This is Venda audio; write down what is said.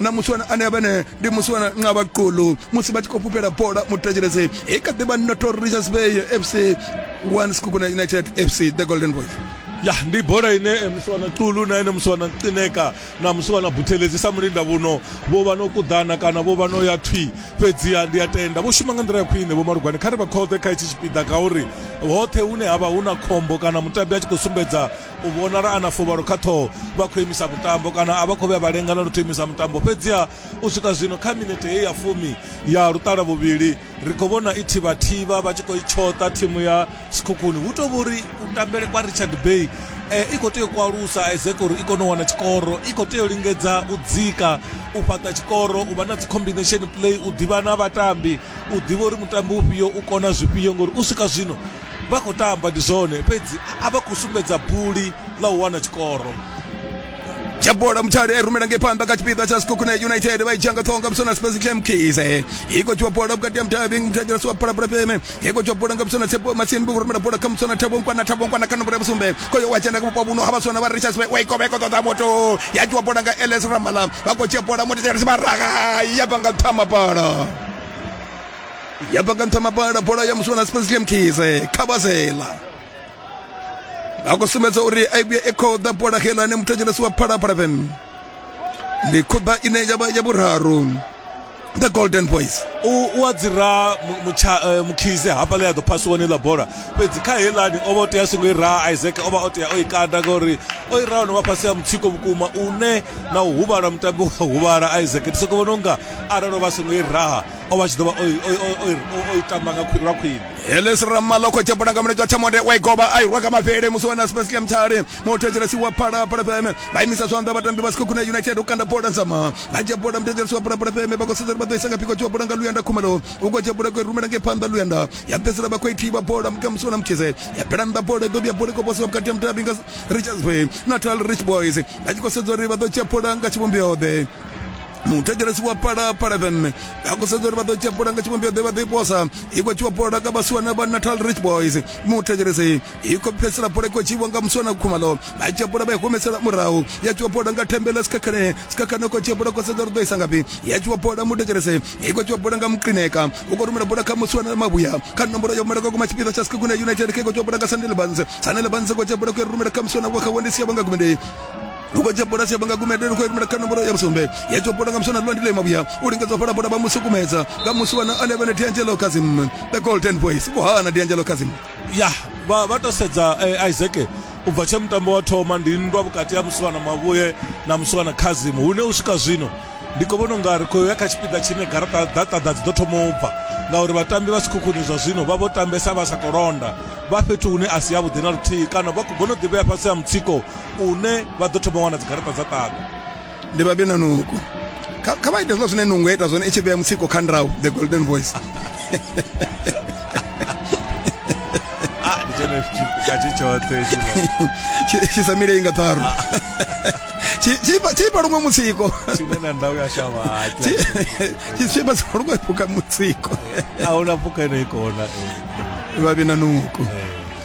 na musiwana ane a vhene ndi musiwana nqaba qulu musi vha tshi khou fhufhela bola mutetshelezi i kha ḓivha notor richards bay fc one skukuna united fc the golden boys ya ndi bola ine eh, musiwana qulu na ene musiwana qineka na musiwana buthelezi sa mulinda vhuno vho vha no kuḓana kana vho vha no ya thwi fhedziha ndi a tenda vho shuma nga nḓila ya khwine vho malugwani kha ri vha khoḓe kha itshi tshipiḓa ngauri hoṱhe hune ha vha hu na khombo kana mutambi a tshi khou sumbedza u vhonala a na fuvhalo kha ṱhoho vha khou imisa mutambo kana a vha khou vhuya vha lenga na luthihi imisa mutambo fhedziha u swika zwino kha minete heyi ya fumi ya luṱala vhuvhili ri khou vhona i thivhathivha vha tshi khou i tshoṱa thimu ya sikhukhuni hu tou vhori u tambele kwa richard bay eh, i khou tea u kwalusa ezek uri i kone u wana tshikoro i khou tea u lingedza u dzika u fhaṱa tshikoro u vha na dzi-combination play u ḓivha na vhatambi u ḓivha uri mutambi ufhio u kona zwifhio ngori u swika zwino vha khou tamba ndi zwone fhedzi a vha khou sumbedza buli ḽa u wana tshikoro tsha bola mutshale eh, rumela ngei phanḓa kha tshipiḓa tsha sikhokune united vha i dzhia nga ṱhonga musona spes kemkise eh. i khou tshiwa bola vhukati ha mutavhi mutagela siwa phalaphala peme i khou tshiwa bola nga musona tsebo masini vho rumela bola kha musona thabonkwana thabonkwana kha nomboro ya vhusumbe khoyo wa dzhena kha vhupo vhuno ha vhasona vha richards bay wa ikovha iko ṱoḓa moto ya tshiwa bola nga ls ramala vha khou dzhia bola moto tshelesi vha raga ya bva nga ṱhama bola ya bva nga nṱha mabala bola ya muswa na spence liamkise khabazela a khou sumbedza uri a vhuya i khou ḓa bola helane muthu a dzhenesi wa phalaphala fm ndi khuḓa ine ya vha ya vhuraru the golden boys u a dzira eh, mukhise hafha ḽe a ḓo phasiwa ni ḽa bola fhedzi kha helani o vha o tea songo i raha isaac o vha o tea o i kanda ngauri o i raha no vha fhasi ya mutsiko vhukuma une na u huvhala mutambi wa huvhala isaac ndi soko vhona unga arali o vha songo i raha o vha tshi ḓo vha o i- o i- o i- o- o i tamba nga khwi- lwa khwine heles ramala khou tshepula nga mulenzhe wa thamode wa igoba a irwa kha mavhele musi wa na spesle mthale muthetshelesi wa phalaphala fm vha imisa zwanḓa vhatambi vha sikho khuna united u kanda bola dzama vha dzhia bola muthetshelesi wa phalaphala fm vha khou sedza uri vha ḓo isa nga phiko tshua bola nga luyanda khumalo u khou dzhia bola khou i rumela ngei phanḓa luyanda ya fhedzisela vha khou i thivha bola muka musi wana muthize ya bela nnḓa bola i ḓo vhuya bola i khou posiwa vhukati ha mutabi nga richards bay natal rich boys vha tshi khou sedza uri vha ḓo dzhia bola nga tshivhumbeo ḓe muthetshelesi wa phalaphala fm vha khou sedza uri vha ḓo tshepula nga tshivhumbeo ḓe vha ḓo iposa i khou tshiwa pola ka vhasiwana vha natal rich boys muthetshelesi i khou pfesela pola i khou tshiwa nga musiwana khumalo vha tshepula vha i humesela murahu ya tshiwa pola nga thembela sikhakhane sikhakhane khou tshepula khou sedza uri ḓo isa ngafhi ya tshiwa pola muthetshelesi i khou tshiwa pola nga muqineka u khou rumela pola kha musiwana mavhuya kha nomboro yo malaka kuma tshipiḓa tsha sikhakhune united khe khou tshiwa pola nga sandelebans sandelebans khou tshepula khou rumela kha musiwana wa kha wendisi ya vha nga gumendei lukodze bola sia banga gumede lukho ikumela kana bola ya busombe ya topota nga msona lwandile mabuya ulingeza fala bola bamusu kumeza nga musu wana 11 D'Angelo Kazim the golden voice kuhana D'Angelo Kazim ya vha vha to sedza eh, Isaac u bva tshe mutambo wa thoma ndi nndwa vhukati ha musiwana mavhuye na musiwana khazim hune u swika zwino ndi khou vhona unga ri khou ya kha tshipiḓa tshine garaṱa data dza dzi ḓo thoma u bva ngauri vhatambi vha sikhukhuni zwa zwino vha vho tambesa vha sa to londa vha fhethu hune a si yavhuḓi na luthihi kana vha khou bono ḓivhea fhasi ha mutsiko une vha ḓo thoma wana dzigaraṱa dza ṱaḓa ndi vha bina nuku kha vha ite zwiḽa zwine nungu ita zwone i tshi vhea mutsiko kha ndrau the golden voice tshisamile i nga ṱharu tshipa luṅwe mutsiko tshipa sa luṅwe phuka mutsiko a huna phuka ino ikona vhavhi na nuku